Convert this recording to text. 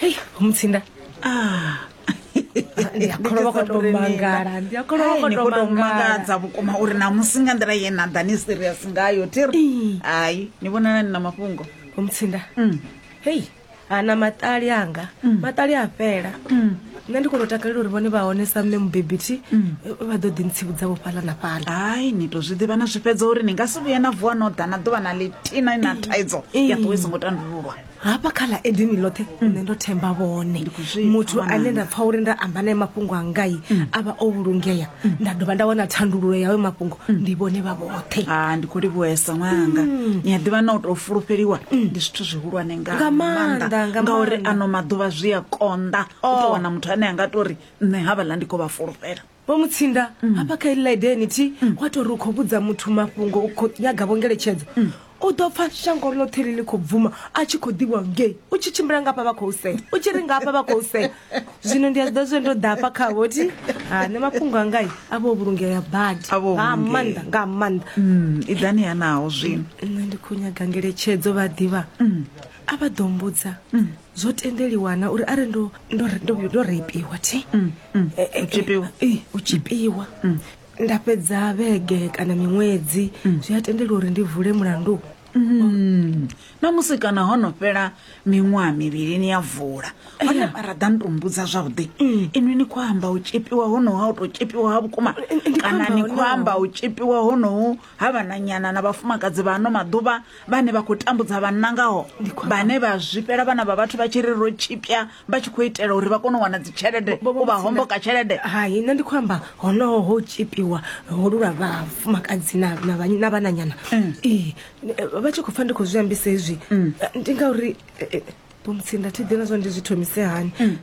hei mutsinda ah. ndi a kholwa vha khou tou mangala ndi a kholwa vha khou tou mangala mangadza vhukuma uri na musi nga nḓila ye na ḓa ni serious ngayo thiri hayi ni vhonana ni na mafhungo mutsinda mm. hei ana maṱali anga mm. maṱali a fhela mm. nṋe ndi kono takalela uri vhone vha hone sa mme mubebi thi vha ḓo ḓi ntsivhudza vho fhaḽa na fhaḽa hai ni to zwi ḓivha na zwi fhedza uri ni nga si vhuye na vuwa no ḓa na ḓuvha na litina na thaidzo ya ṱuwe songo tandululwa hafha kha ḽa edini ḽoṱhe nṋe ndo themba vhone muthu ane nda pfa uri nda amba naye mafhungo angai a vha o vhulungea nda dovha nda wana thandululo yawe mafhungo ndi vhone vha vhoṱhe ha ndi khou livhuhesa ṅwananga mm. ni a ḓivha na u tou fulufheliwa mm. ndi zwithu zwihulwane nga maanḓa ngauri ano maḓuvha zwi a konḓa u oh. tou wana muthu ane a nga tori nṋe havhaḽa ndi khou vha fulufhela vho mutsinda mm. hafha kha iḽi ḽa idenity wa tori u khou vhudza muthu mafhungo u khou nyaga vhongeletshedzo U ḓo pfa shango ḽoṱhe ḽi ḽi khou bvuma a tshi khou ḓivhiwa ngei u tshi tshimbila nga hafha vha khou sea u tshi ri nga hafha vha khou sea zwino ndi a zwi ḓa zwe ndo ḓa hafha khavho thi ha nṋe mafhungo angai a vho vhulungea badi A vho nga vhulungea. maanḓa nga maanḓa Mm, iḓani hanaho zwino nṋe ndi khou nyaga ngeletshedzo vha ḓivha a vha ḓo mbudza zwo tendeliwa na uri arali ndo ndo ndo- ndo reipiwa thi Eh, eh, eh, tshipiwa. eh, u tshipiwa nda fhedza vhege kana miṅwedzi mm. zwi a tendela uri ndi vule mulandu mm. na musi kana ho no fhela miṅwaha mivhili ni ya vula hone eh. ra ḓa ni to mbudza zwavhuḓi mm. inwi ni khou amba u tshipiwa honoho ha u tou tshipiwa ha vhukuma eh, eh, kana ni khou amba u tshipiwa honoho ha vhananyana na vhafumakadzi vha ano maḓuvha vhane vha khou tambudza vhanna ngaho vhane vha zwifhela vhana vha vhathu vha tshi ri ro tshipya vha tshi khou itela uri vha kone u wana dzi tshelede u vha homboka tshelede hai nṋe ndi khou amba honoho ho tshipiwa holu lwa vhafumakadzi na na vha- na vhananyana Mm. ee eh, vha tshi khou pfa ndi khou zwi ambisa hezwi Mm. eh, ndi ngauri eh, eh, bomutsinda thi ḓi na zwa ndi zwi thomise hani Mm.